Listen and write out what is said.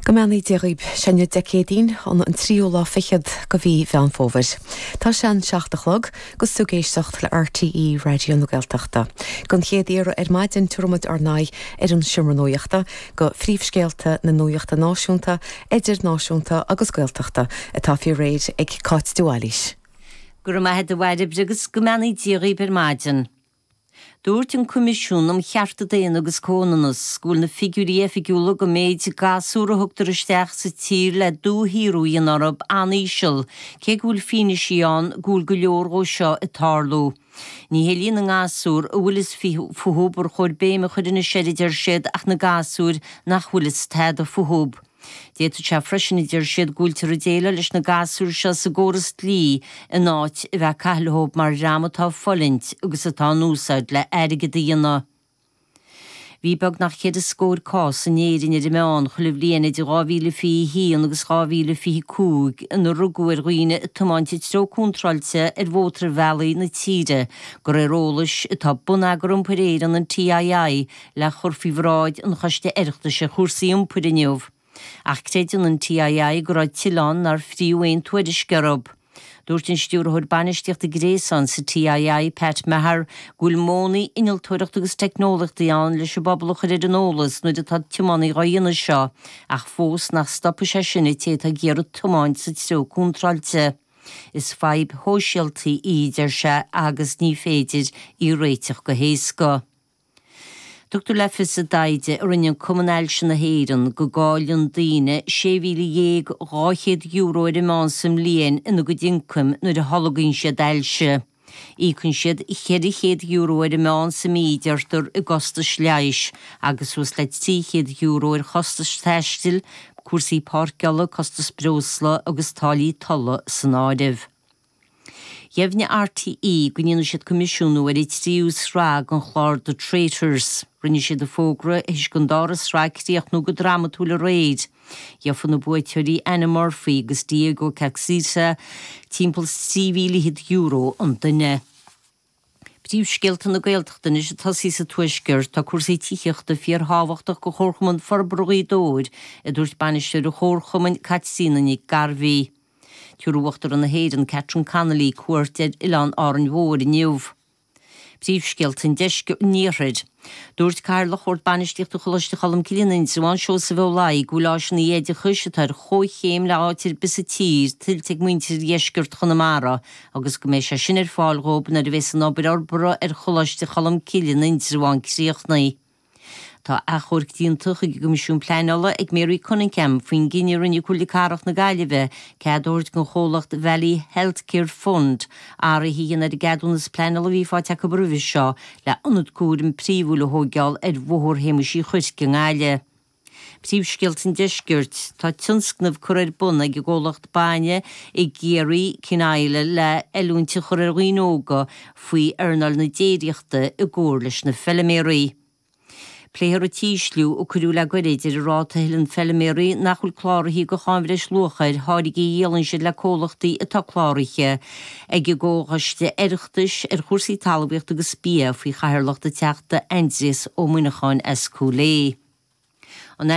Go mbeannaí Dia dhaoib. Seo í an Dé Céadaoin, an an tríú lá fichead de mhí Mheán Fómhair. Tá sé a seacht a chlog gus tú ag éisteacht le RTÉ Raidió na Gaeltachta. Den chéad iarraidh ar maidin tiúramid ár n-aghaidh ar an seomra nuachta go phríomhscéalta na nuachta náisiúnta, idirnáisiúnta agus Gaeltachta atá faoi réir ag Cáit de Bhailís. Go raibh maith a'd a Mhairéad agus go mbeannaí Dia dhaoib ar maidin. Dúirt an Coimisiún um Chearta Daonna agus Comhionannas go bhfuil na figiúirí oifigiúla den mhéid gasúr a thugtar isteach sa tír le dúshaothrú a dhéanamh orthu an-íseal, cé go bhfuil fianaisí ann go bhfuil go leor dhó seo ag tarlú. Ní hé líon na ngasúr a bhfuil fhios fúthu ar chóir béim a chur anois air, a deir siad, ach na gasúir nach bhfuil fhios tada fúthu. D'fhéadfadh sé freisin, a deir siad, go bhfuiltear ag déileáil leis na gasúir seo sa gcóras dlí in áit a bheith ag caitheamh leob mar dhream atá ag fulaingt agus atá in úsáid le airgead a dhéanamh. Bhí beagnach ceithre scóir cás in Éirinn ar an meán chuile bhliain idir 2021 agus 2025 inar rugadh ar dhaoine ag tiomáint i dtreo contráilte ar mhótarbhealaí na tíre de réir eolais atá Bonneagar Iompair Éireann, an TII, le cur faoi bhráid an Choiste Oireachtais ar Chúrsaí Iompair inniu, ach creideann an TII go raibh tuilleadh ann nár fríodh aon tuairisc orthu. Dúirt an Stiúrthóir Bainistíochta Gréasáin sa TII, Pat Maher, go bhfuil modhanna innealtóireachta agus teicneolaíochtaí ann leis an bpobal a chur ar an eolas nuair atá tiománaí dhá dhéanamh seo, ach fós nach stopfaidh sé sin an té atá ag iarraidh tiomáint sa treo contráilte. Is fadhb shóisialta í, a deir sé, agus ní féidir í a réiteach go héasca. Tugtar le fios i dtaighde a rinne Cumann Ailse na hÉireann go gcailleann daoine €16,200 ar an meán sa mbliain ina gcuid ioncaim nuair a tholgaíonn siad ailse. Íocann siad €400 ar an meán sa mí, deirtear, i gcostais leighis agus suas le €300 ar chostais taistil, cúrsaí páirceála, costas breosla agus táillí tolla san áireamh. Dheimhnigh RTÉ go ndéanfaidh siad coimisiúnú ar an tríú sraith den chlár The Traitors. Rinne siad an fógra th'éis don dara sraith críochnú go drámatúil aréir. Gheofaidh na buaiteoirí, Anna Murphy agus Diego Caxita, timpeall €3,100 an duine. príomhscéalta na Gaeltachta anois ag tosaí sa Tuaisceart, tá cúrsaí tithíochta fíorthábhachtach do Chomharchumann Forbartha Ghaoth Dobhair, a dúirt Bainisteoir an Chomharchumainn, Caitríona Nic Gairbheith. Tiúrfaidh Uachtarán na hÉireann, Catherine Connolly, cuairt ar Oileán Árainn Mhór inniu. Príomhscéalta an Deisc, an Iarthair. Dúirt Cathaoirleach Bhord Bainistíochta Choláiste Cholmcille in Indreabhán, Seosamh Ó Laoi, go bhfuil áiseanna oideachais atá ar chomhchéim le háit ar bith sa tír tuillte ag muintir dheisceart Chonamara agus go mbeidh sé sin ar fáil dhóibh nuair a bheas an obair fhorbartha ar Choláiste Cholmcille in Indreabhán críochnaithe. Tá achomharc déanta chuig an gCoimisiún Pleainála ag Mary Cunningham faoin gcinneadh a rinne Comhairle Cathrach na Gaillimhe cead a thabhairt don chomhlacht Valley Healthcare Fund athruithe a dhéanamh ar an gceadúnas pleainála a bhí faighte acu roimhe seo le hionad cúraim príomhúil a thóigeáil ar Bhóthar Shéamais Uí Chuirc i nGaillimh. Príomhscéalta an Deiscirt. Tá tionscnamh curtha ar bun ag an gcomhlacht bainne i gCiarraí, Kinisla, le oiliúint a chur ar dhaoine óga faoi earnáil na déiríochta i gcomhar leis na feiliméaraí. Pléifear an t-ísliú a cuireadh le goirid ar an ráta a thuilleann feilméaraí nach bhfuil cláraithe do cháin bhreisluacha ar tháirgí a dhíolann siad le comhlachtaí atá cláraithe ag an gComhchoiste Oireachtais ar chúrsaí Talmhaíochta agus Bia faoi chathaoirleacht an Teachta Aindrias Ó Muineacháin as Cúil Aodha.